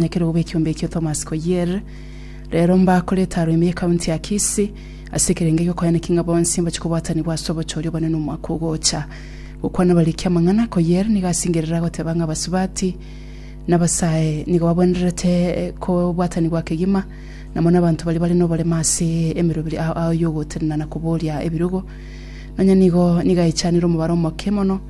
Nyekere obo ekiombe ekio Thomas Koier rero mbakorete aro ime y'ekaunti ya Kisii ase ekerenge gi'okoyaneki ng'a bonsi mbache kobwatanigwa ase obochori obonene omwaka ogocha. Gokwana bariki amang'ana, Koier nigo asingerere agoteba ng'a abasubati na abasae nigo babwenererete kobwatanigwa kegima na mono abanto baria bare noborema ase emeroberi ao y'ogotenena na koboria ebirogo. Nonya nigo nigo aechanire omobaro omoke mono,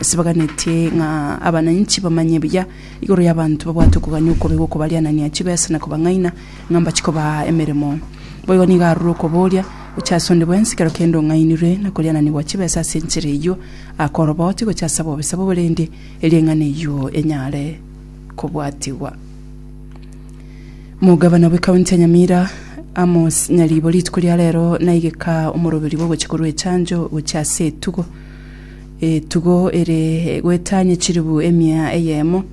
Ase baganetie ng'a abananchi bamanye buya igoro y'abanto babwate okogania okobe gokobarianania chibesa na kobang'aina ng'a mbachi kobaa emeremo. Boigo nigo arure okoboria gochia ase onde bwensi kero kende ong'ainirwe na koriananigwa chibesa ase enchera eyio akoroboti gochia ase abobisa bobo rende erieng'ana eyio enyare kobwatigwa. Omogabana bw'ekaunti ya Nyamira, Amos Nyaribo rituko ria rero naigeka omoroberio bw'ogochia korwa echanjo gochia ase etugo. etugo ere gwetanya chiribu emia eyemo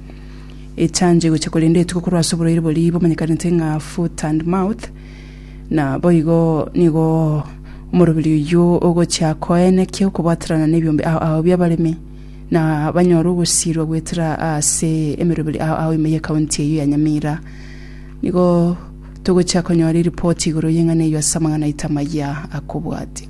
echange gocha korenda etugo korwa ase oborwaire boria bomanyekanete ng'a foot and mouth na boigo nigo omorobiri oyio ogochia koenekia okobwaterana nebiombe ao ao biabaremi na banyore ogosirwa goetera ase emeroberi ao ao ime y'ekaunti eyio ya Nyamira nigo togochia konyora eripoti igoro y'eng'ana eyio ase amang'ana aito amayia akobwatia.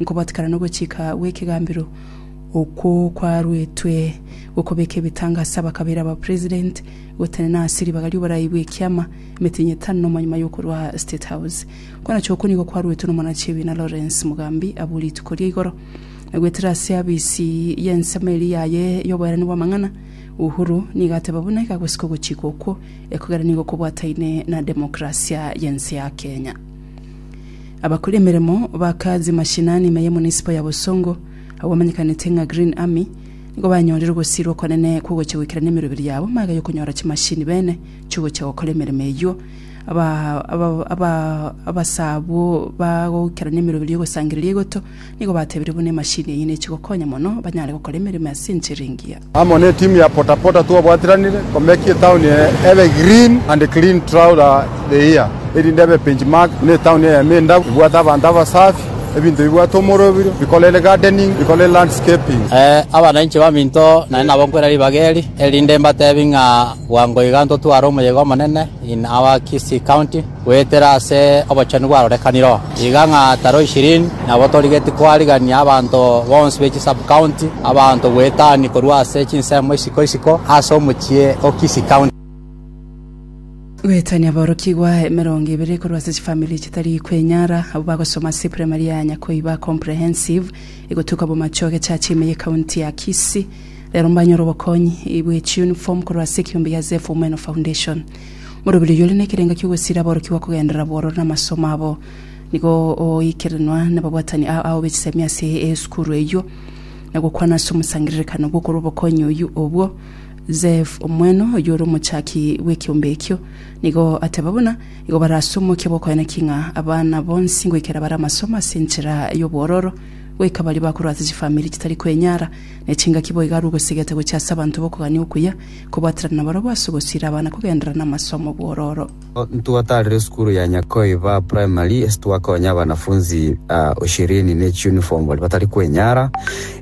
Nkobatikana nogochika gw'ekegambero okwo kwaruetwe gokobeka ebitanga ase abakabaire aba President gotenena ase ribaga ri'oborai bw'ekiama emetenyi etano nomo nyuma y'okorwa State House. Kwanachia okwo nigo kwaruetwe n'omwanachiebina Lawrence Mugambi abwo rituko ria igoro nagwetire ase abisi y'ensemo eria yaye y'oboerani bw'amang'ana. Uhuru nigo ateba buna egagosika ogochika okwo ekogera nigo kobwataine na democracia y'ense ya Kenya. Abakora emeremo ba kazi mashinani ime y'emunisipo ya Bosongo, abamanyekaniete ng'a Green Army, nigo banyorire ogosirwa okonene kw'ogocha goikera n'emeroberi yabo magega y'okonyora chimashini bene chi'ogocha gokora emeremo eyio. Aba- aba- aba- abasabwo bagoikera n'emeroberi y'ogosangereria egoto, Nigo batebirie buna emashini eyio nechi gokonya mono banyare gokora emeremo ase enchera engiya. Amo ne timu ya Pota Pota twabwatiranire komeki etauni eye ebe green and clean throughout the year erinde ebe bench mark buna etauni eye ime endabu, ebwate abanto abasafi, ebinto bibwate omoroberio, bikorere gardening, bikorere landscaping. Abana inche baminto nare nabo nkwera ribaga eri, erinde mbatebie ng'a bwango iga ntotware omoyega omonene in our Kisii County. Goetera ase obochenu bwarorekanire oo, iga ng'a tari oishirini nabo torigetie koarigania abanto bonsi be chisub-county abanto goetania korwa ase chinsemo isiko isiko ase omochie o Kisii County. Goetania aborokigwa emerongo ebere korwa ase chifamiri chitari kwenyara abwo bagosoma ase eprimari ya Nyakoiba Comprehensive egotuka bomache ogechacha ime ye county ya Kisii rero mbanyore obokonyi bwe chiuniform korwa ase ekeombe gia Zephyr Umeno Foundation. Orobererio ore nekerengo ki'ogosira aborokigwa kogenderera bororo namasomo abo. Nigo ogoikeranwa nababwatani ao ao bechisemi ase esukuru eyio, na gokwana ase omosangererekano bw'okorwa obokonyi oyio obwo. Zeph omwene oyio ore omochaki bw'ekeombe ekio, nigo ateba buna igo bare ase omokia bw'okoyana ki ng'a abana bonsi ngoikera bare amasomo ase enchera y'obwororo, goika baria bakorwa ase chifamiri chitari kwenyara, ne chingaki boigo arwe ogosegeta gochia ase abanto b'okogania okuya, Kobwaterana nabarabwo ase ogosiira abana kogenderera namasomo bw'ororo. Ntwatarire esukuru ya Nyakoiba Primary ase twakonya abanafunzi ishirini ne chiuniform baria batari kwenyara.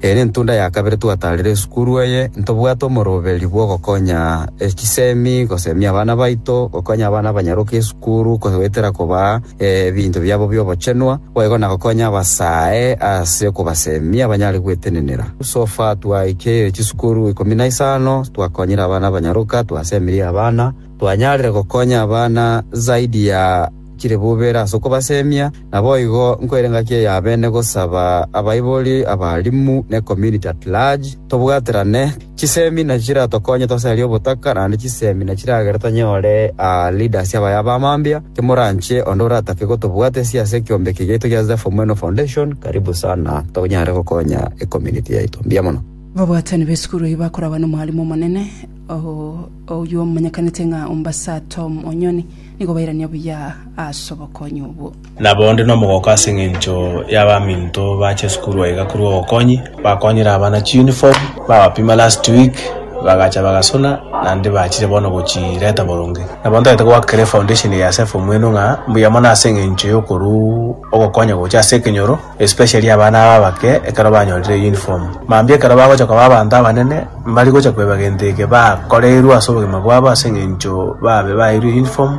Eye nentunda ya kabere twatarire esukuru eye. Ntobwate omoroberi bw'ogokonya chisemi, gosemia abana baito, gokonya abana abanyaroka esukuru, goetera kobaa. ebinto biabo bi'obochenwa, boigo na gokonya abasae ase okobaseemia banyare gwetenenera. So far twaikeirie chisukuru ikomi na isano, twakonyire abana abanyaroka, twaseemirie abana, twanyarire gokonya abana zaidi ya chiribubera ase okobaseemia. Naboigo nkoire engaki eyabene gosaba abaibori, abalimu, ne community at large tobwaterane, Chisemi nachi chiratokonye tosarie obotaka naende chisemi nachi chiragere tonyore leaders abaya abamambia. Kemoranche onde oratake gotobwatesia ase ekiombe eke giaito gia Zephyr Mweno Foundation, karibu sana tonyare gokonya ecommunity yaito. Mbuya mono. Babwatani b'esukuru eyio bakoragwa n'omwalimu omonene oyio omanyekanete ng'a Ombasa Tom Onyoni nigo bairania buya ase obokonyi obwo. Nabo onde nomogooko ase engencho y'abaminto bache esukuru aiga korwa obokonyi, bakonyire abana chiuniform, babapima last week, bagacha bagasona, naende bachire bono gochireta boronge. Nabo ntagete goaka kera efoundation eye ase efomweno ng'a mbuya mono ase engencho y'okoruu ogokonya gocha ase ekenyoro, especially abana aba abake ekero banyorire euniform. Mambia ekero bagocha koba abanto abanene, mbari gocha koeba gento eke bakoreirwe ase obogima bwabo ase engencho babe baeirwe euniform,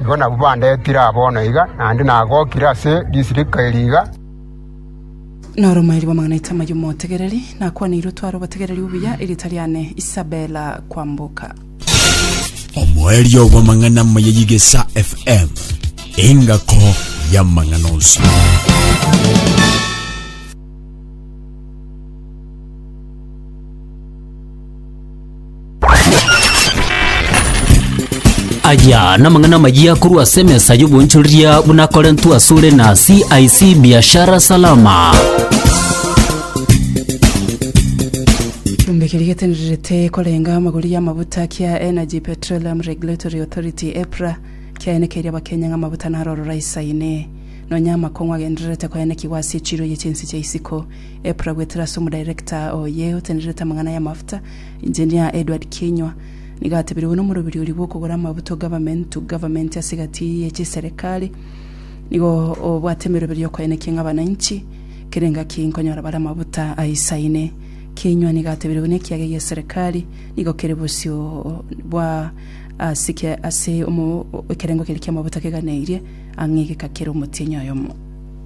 Igo nabwo bandetire aa bono iga, naende nagokire ase disiriki eri iga. Noromairi bw'amang'ana aito amayio motegereri, nakwaneirwe otware obotegereri obuya, erieta riane Isabella Kwamboka. Omoerio bw'amang'ana amaya y'Egesaa FM, engako y'amang'ana onsi. Aya namang'ana amayia korwa ase emesa y'obonchoreria buna akorentwe asore na CIC Biashara Salama. Chumbe keria getenererete korenga amagori y'amabuta kia Energy Petroleum Regulatory Authority EPRA kiaenekeire abakenya ng'a amabuta naro ororo aisaine nonya amakong'u agendererete koenekigwa ase echiro ye chinsi chia isiko Epura gwetera ase omodirector oye otenerete amang'ana y'amafuta, Engineer Edward Kinyua, nigo atebiregwe nomorobiri oria bw'okogora amabuta o government to government ase egati ye chiserekari. Nigo obwate emeroberi y'okoenekia ng'a abananchi kera engaki nkonyora bare amabuta aisaine. Kinyua nigo atebiregwe na ekiage gia eserekari nigo kere bosio bwa ase kia ase omo ekerengo keria ki'amabuta keganeirie ang'e egeka kere omotienyi oyomo.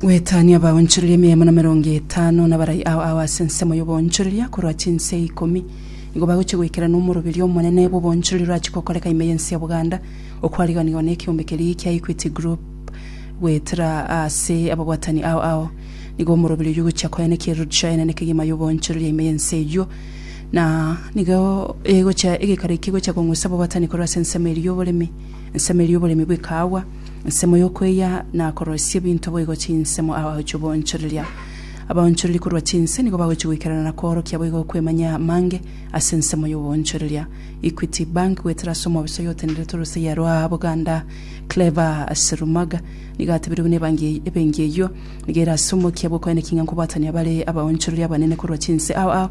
Gwetania abaonchoreria emeremo na merongo etano nabarai ao ao ase ensemo y'oboonchoreria korwa chinse ikomi. Nigo bagochia goikerana omoroberio omonene bw'oboonchoreria orachia gokoreka ime y'ense ya Buganda, okwariganiwa nekeombe keria kia Equity Group goetera ase ababwatani ao ao. Nigo omoroberio oyio ogochia koenekia eroadshow enene kegima y'oboonchoreria ime y'ense eyio, na nigo egochia egekaro ekio egochia kong'usa ababwatani korwa ase ensemo eria y'oboremi, Ensemo eria oboremi bw'ekaagwa, ensemo y'okweyia na koroisia ebinto boigo chinsemo abagochi oboonchoreria. Abaonchoreri korwa chinse nigo bagochi goikerana na koorokia boigo okwemanyia amange ase ensemo y'oboonchoreria. Equity Bank goetera ase omoofisa oyotenderete orosaiya rwa Buganda Clever Serumaga nigo atebirie buna ebengi eyio nigo ere ase omokia bw'okoenekinia nkobwatania bare abaonchoreri abanene korwa chinse ao ao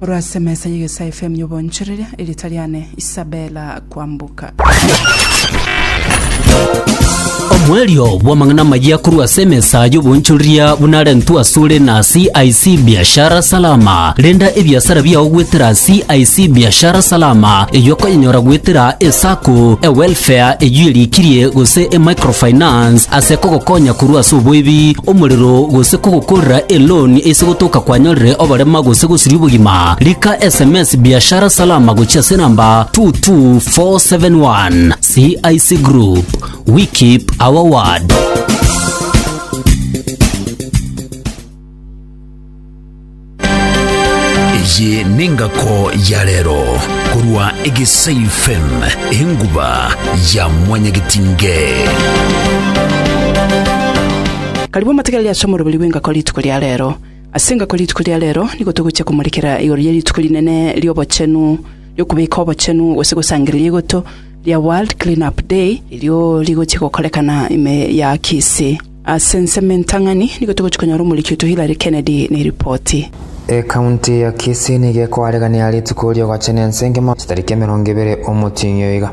Korwa ase emesa y'egesae efemu y'obonchoreria, erieta riane Isabella Kwambuka. Omoerio bw'amang'ana amayia korwa ase emesa y'obonchoreria buna arentwe asore na CIC Biashara Salama. Renda ebiasara biao goetera CIC Biashara Salama, eyio okonyenyora goetera eSacco, eWelfare, eyio erikirie, gose eMicrofinance ase kogokonya korwa ase oboibi, omorero, gose kogokorera eloan ase Gotoka kwanyorire oborema gose gosiria obogima, rika sms Biashara Salama gochia ase namba 22471. CIC Group, we keep our word. eye nengako ya rero korwa egesai fm enguba ya mwanyagitinge Karibu motegereri ase omorobori bw'engako rituko ria reero. Ase engako rituko ria reero nigo togochia komorekera igoro ye rituko rinene ri'obochenu ri'okobeka obochenu gose gosangereria igoto ria World Clean Up Day, erio rigochia gokorekana ime ya Kisii. Ase ensemo entang'ani nigo togochia konyora omoriki oito Hillary Kennedy na eripoti. Ecounty ya Kisii nigo ekoaregania rituko ri'ogochena ense engima chitariki emerongo ebere omoching'io iga.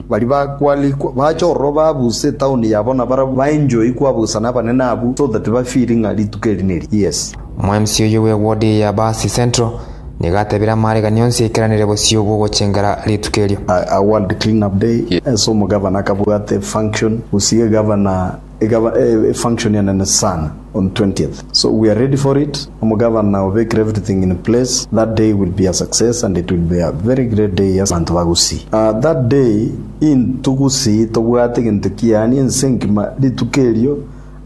Baria bakwarikwa bacha ororo babusa etaoni yabo na barabwo ba enjoy kwabusa nabanene abwo so that ba feel ng'a rituko eri neri yes. Omwemsi oyio bwe ward eye ya Baasi Central nigo atebire amaregani onsi aikeranere bosio bw'ogochengera rituko erio. A world clean up day, ense omogavana akabwate function, gusige gavana. Ekaba e function enene sana on 20th so we are ready for it, omogavana obekire everything in place, that day will be a success and it will be a very great day ase abanto ba Gusii. Aah that day into Gusii tobwate egento kiaani ense engima rituko erio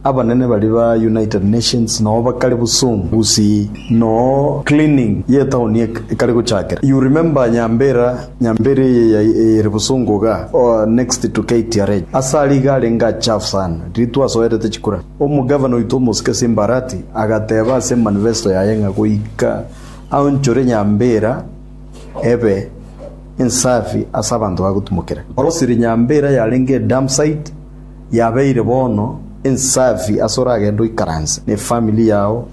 abanene baria ba United Nations noo bakare bosom Gusii noo cleaning ye etown ekare gochakera, you remember Nyambera Nyambera eye ere bosongo iga, next to KTRH. Ase aria iga arenge achafu sana. Ritu asoerete chikura. Omogavana oito omosike Simbarati agateba ase manifesto yaye ng'a goika aonchore Nyambera ebe ensafi ase abanto bagotumokera. Orosire Nyambera yarenge edump site yabeire bono ensafi ase oragende oikaranse ne family yao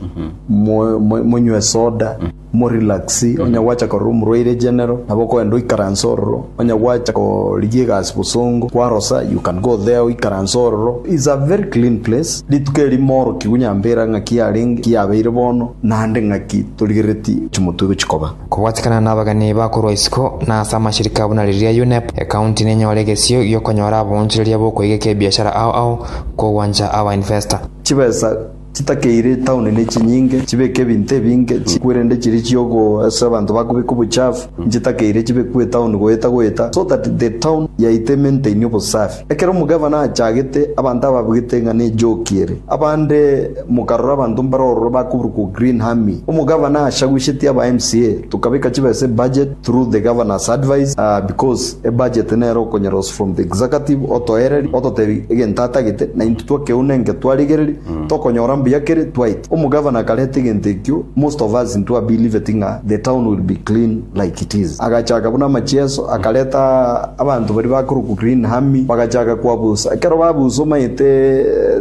monywe soda. Mo relax, onye gwacha korora omorwaire general, nabo okoenda oikaranse ororo, onye gwacha korigia egasi bosongo, kwarosa, you can go there oikaranse ororo, it's a very clean place, rituko eri moorokigwe nyambera ng'aki yarenge, ki yabeire bono, naende ng'aki torigereti chimotwe gochikoba. Kobwatikana nabageni bakorwa isiko na ase amashirika buna riria UNEP, ecounty nenyore egesio giokonyora aboonchoreria bokoigeka ebiashara ao ao kogwancha aba investor. Chibesa. Chitakeire etaoni ne chinyinge, chibeke ebinto ebinge chikwe rende chiria chi'ogoa ase abanto bakobeka obochafu, inche takeire chibekwe etaoni goeta goeta, so that the town yaito emaintaini obosafi. Ekero omogavana aachagete, abanto ababwete ng'a nejoki ere. Abande mokarora abanto mbare ororo bakoburukwa green harming. Omogavana aachagushetie aba MCA, tokabeka chibesa ebudget, through the Governor's advice aah because ebudget nere okonyora us from the executive otoereria ototebi egento atagete na intwe twakeuna enke twarigereria tokonyora mbuya kere twaite Omogavana akareta egento ekio most of us intwe abelieved ng'a the town will be clean like it is agachaka buna amachieso akareta abanto baria bakorokwa Green Army bagachaka koabusa ekero babusa omanyete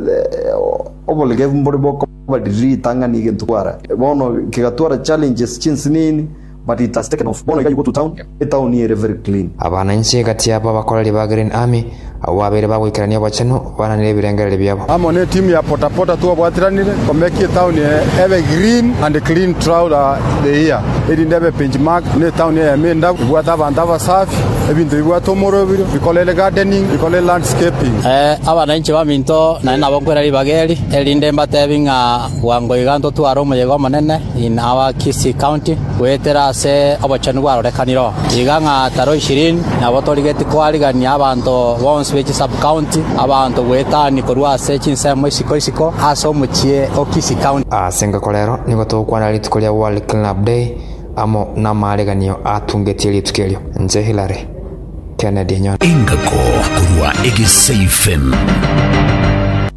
the oboregevu mbore bokoba riria ritang'ani egento kwara bono kegatwara challenges chinsinini But it has taken off. Bono iga you go to town, etaoni ere very clean. Abana inche egati aba bakoreri ba Green Army, abwo babeire bagoikerania obochenu, bananire ebirengererio biabo. Amo ne timu ya Potapota twabwatiranire komeki etaoni eye ebe green and clean throughout the year erinde ebe benchmark na etaoni eyemo endabu, ebwate abanto abasafi, ebinto bibwate omorobirio, bikorere gardening, bikorere landscaping. Abana inche baminto nare nabo nkwera ribaga eri, erinde mbatebi ng'a bwango iga ntotware omoyega omonene. In our Kisii county, goetera ase obochenu bwarorekanire oo, iga ng'a taro ishirini nabo torigetie koarigania abanto bonsi be chisub county abanto goetania korwa ase chinsemo isiko isiko ase omochie o Kisii county. Ase engako rero nigo togokwana rituko ria World Cleanup Day amo namaareganio atungetie rituko erio. Inche Hilary. Kennedy Enyondo. Engako korwa egeseifen.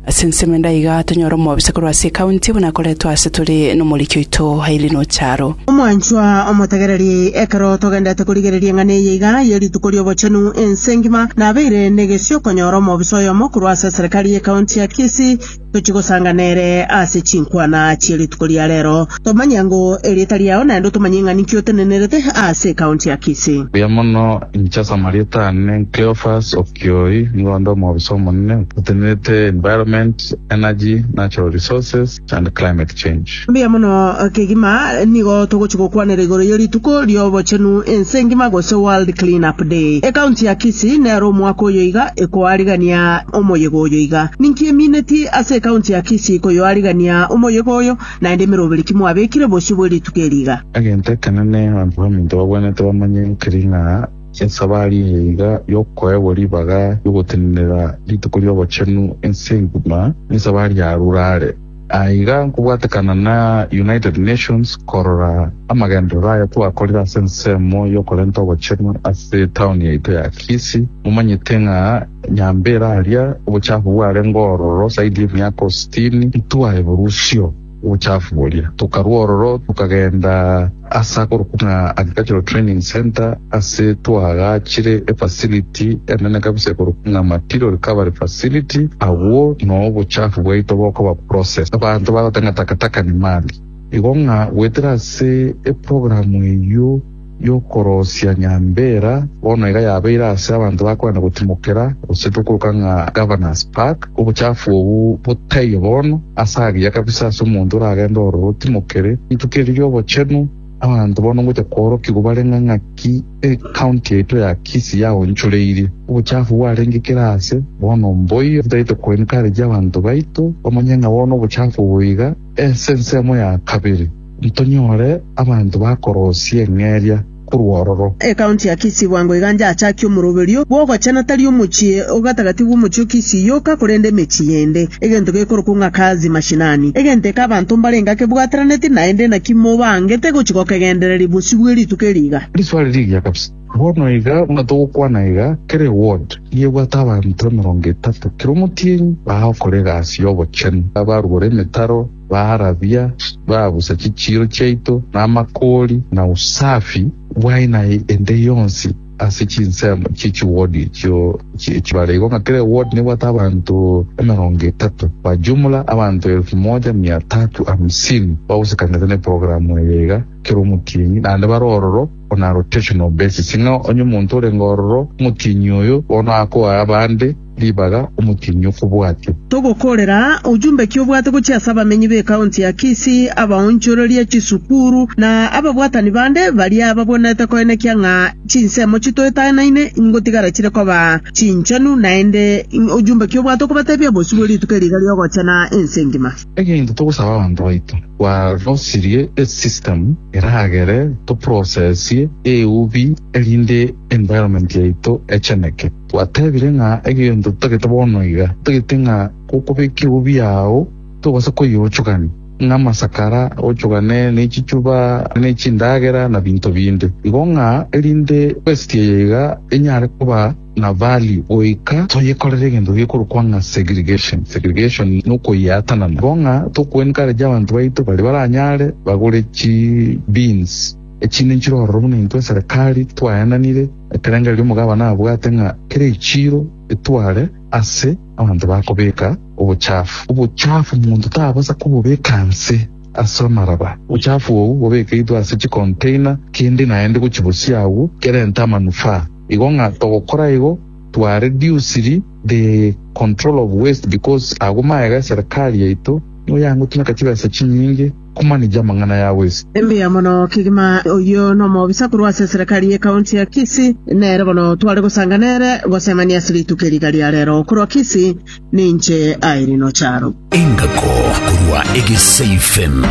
Ase ensemo ende aiga tonyore omobisa korwa ase ekaunti buna akoretwe ase tore nomoriki oito Aileen Ocharo. Omwanchwa omotegereri, ekero togendete korigereria eng'ana eye iga ye Rituko ri'Obochenu ense engima, nabeire negesio konyora omobisa oyomo korwa ase eserekari y'ekaunti ya Kisii, Tochie gosanga nere ase chinkwana chie rituko ria rero, tomanye ng'o erieta riao naende otomanye ng'a ninki otenenerete ase ekaunti ya Kisii. Buya mono, inche ase amarieta aane Cleophas Okioi, nigo onde omobisa omonene otenerete Environment, Energy, Natural Resources and Climate Change. Mbuya mono kegima nigo togochi gokwanera igoro ye rituko riobochenu ense ngima gose World Clean Up Day. Ecounty ya Kisii nero omwaka oyoiga ekoarigania omoyega oyo iga. Ninki emineti ase ecounty ya Kisii koyoarigania omoyega oyo naende emeroberi ki mwabekire bosio bwe rituko eri iga? Egento ekenene abanto baminto babwenerete bamanye keri ng'a esabari eye iga yokoegwa ribaga riogotenenera rituko riobochenu ense ngima nesabari yarurare. Aiga nkobwatekana na United Nations korora amagenderero aya twakorire ase ensemo y'okorenta obochenu ase etaoni yaito ya Kisii. Momanyete ng'a nyambere aria obochafu bwarenge ororo zaidi y'emiaka sitini, intwae borusio obochafu boria, tokarwa ororo tokagenda. Ase akorokwa ng'a Agricultural Training Centre ase twagaachire efacility enene kabisa ekorokwa ng'a Material Recovery Facility, agwo noo obochafu bwaito bokoba processed. Abanto bagoteba ng'a takataka ni mali. Igo ng'a goetera ase eprogram eyio y'okorosia nyambera bono iga yabeire ase abanto bakoenda gotimokera gose tokoroka ng'a Governors Park, Obochafu obwo botaiyo bono ase agiya kabisa ase omonto oragende ororo otimokere rituko eri ri'obochenu. Abanto bono ngocha koorokigwa bare ng'a ng'aki ecounty yaito ya Kisii yaonchoreirie obochafu bwarenge kera aase. Bono mboiyo titagete ko encourage abanto baito bamanye ng'a bono obochafu obo iga ase ensemo ya kabere ntonyore abanto bakorosia eng'eria. korwa ororo. Ekaunti ya Kisii bwango iga njachakia omoroberio bw'ogochena tari omochie ogatagati bw'omochie o Kisii yoka korende emechie yende. Egento gekorokwa ng'a kazi mashinani. Egento eke abanto mbarenge ake bwateranetie naende naki mobangete gochi gokegendereria bosio bwe rituko eri iga. Riswali rigiya kabisa. Bono iga buna togokwana iga, kera eward yebwate abanto emerongo etato, kera omotienyi baao kora egasi y'obochenu, abarugore emetaro, Barabia baa bosa chichiiro chiaito, na amakoori, na usafi bwaye, na ende yonsi ase chinsemo chie chiwodi echio chibare igo ng'a kera ewodi nebwate abanto emerongo etato. Kwa jumla, abanto elfu moja mia tatu hamsini bagosekanete neprogramu eye iga kera omotienyi naende bare ororo on a rotational basis ng'a onye omonto orenge ororo omotienyi oyo bono akoa abande ribaga omotienyi okobwatio. Togokoorera aa, ojumbe ki obwate gochia ase abamenyi b'ekaunti ya Kisii, abaonchoreria chisukuru, na ababwatani bande baria babwenerete koenekia ng'a chinsemo chitoetanaine ngotigara chire koba chinchenu, naende ojumbe ki obwate okobatebia bosio bwe rituko eri iga riogochena ense engima? Egento togosaba abanto baito, twarosirie esystem eragere toprocessie eubi erinde environment yaito echeneke. Gwateebire ng'a egento totagete bono iga, totagete ng'a gokobekia obobe ao togose koyeochogania, ng'a amasakara ochogane ne chichuba ne chindagera na binto binde igo, ng'a erinde esegi eye iga enyare koba na value goika toyekorere egento gekorokwa ng'a segregation. Segregation nokoyeatanana, igo ng'a tokoenkaragia abanto baito baria baranyare bagore chi beans. Echi ninchire ororo buna intwe eserekari twaenanire ekerengererio omogabana abwate ng'a kera echiiro etware ase abanto bakobeka obochafu. Obochafu monto tabasa kobobeka nse ase amaraba. Obochafu obwo bobekeitwe ase chikonteina kende naende gochibosia agwo kerente amanufaa. Igo ng'a togokora igo twa rediusiri the control of waste because agwo magega eserekari yaito nigo yangotumeka chibesa chinyinge. Komanija amang'ana yao ase. Mbuya mono kegima. Oyio nomobisa korwa ase eserekari ye county ya Kisii. Nere bono tware gosanga nere gosemania ase rituko eri iga ria rero korwa Kisii. Ninche Irene Ocharo. Engako korwa Egesaifm.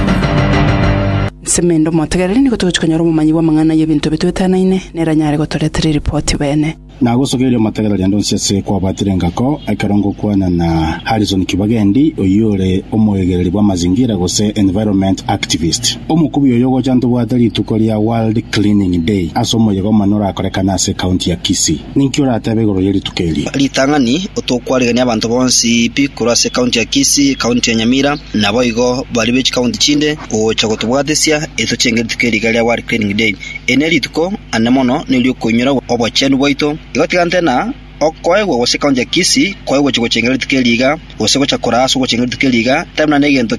Nsemende omotegereri nigo togochia konyora omomanyi bw'amang'ana y'ebinto ebio twetanaine, nere anyare gotoretera eripoti bene. Nagosokeire omotegereri ande onsi ase kwabatire engako, ekero ngokwana na Harrison Kibagendi, oyio ore omoegereri bw'amazingira gose environment activist. Omokubi oyo ogocha ntobwate rituko ria World Cleaning Day ase omoyega omonene orakorekane ase ekaunti ya Kisii. Ninki oratebe igoro ye rituko eri? Ritang'ani, Otokwarigania abanto bonsi pi korwa ase ekaunti ya Kisii, ekaunti ya Nyamira, naboigo baria be chikaunti chinde, gocha gotobwatesia etochenge rituko eri iga ria World Cleaning Day. Eri nerituko anene mono neri'okoinyora obochenu bwaito, igotiganete na okoegwa gose koancha kisi kwaye gochia gochenga rituko eri iga, gose gocha koraa ase ogochenga rituko eri iga, tari buna negento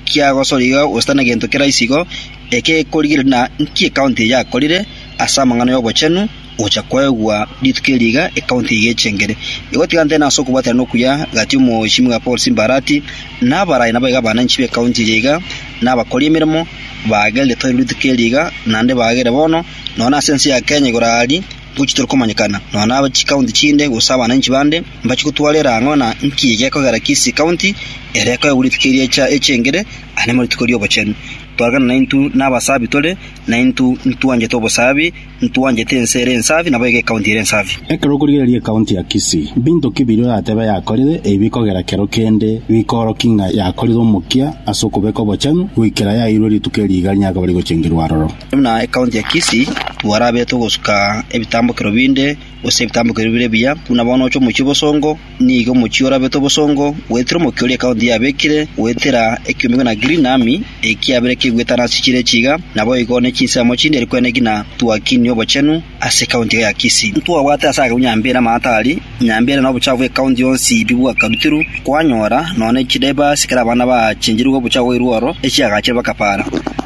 kiagosora iga gose tari negento keraisi igo, ekegekorigereria na nki ekaunti eye yakorire ase amang'ana y'obochenu, Gocha kwaegwa rituko eri iga ekaunti eye y'echengere igotigana tene ase okobwaterana okuya gati omochimi bwa Paul Simbarati na abaraai nabo iga abananchi b'ekaunti eye iga na abakori emeremo baagerire toiro rituko eri iga naende baagere bono nonya ase ense ya Kenya igoro aaria ngochia torikomanyekana nonya na chikaunti chinde gose abananchi bande mbachie gotwarera ang'o na nki egekogera Kisii county ere ekoegwa rituko eri echengere aye namo rituko ri'obochenu. Twarekana naintwe na abasabi tore naintwe ntwanchete obosabi. Ntwanchete ense ere ensafi, nabo iga ecounty ere ensafi. Ekero okorigereria ecounty ya Kisii, mbinto ki biria oratebe yakorire, ebi bikogera kero kende bikoorokia ng'a yakorire omokia ase okobeka obochenu goikera yairwe rituko eria igari nyakaba bari gochengerwa aroro? Buna ecounty ya Kisii, twarabete ogosuka ebitambokero binde, gose ebitambokero bire ebiya, buna bono oche omochie bosongo, Nigo omochie orabete obosongo goetera omokia oria ekaunti yabekire goetera ekiomigwe na Green Army ekiabire keguetana ase chire chiga, naboigo nechinsemo chinde eri kwene ngina Tuakini obochenu ase ekaunti iga ya Kisii. Ntwabwate ase agwo Nyambere amataari, Nyambere na obochafu bw'ekaunti yonsi bibwakarutirwe, kwanyora nonya ne chidivers ekero abana baachencherigwe obochafu bwairwe oro, echiagachire bakapara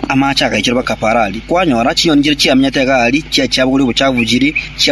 amaache agaichorwa bakapara aria, kwanyora chinyoni chire chiamenyete iga aria chiachia bogoria obochafu chiri,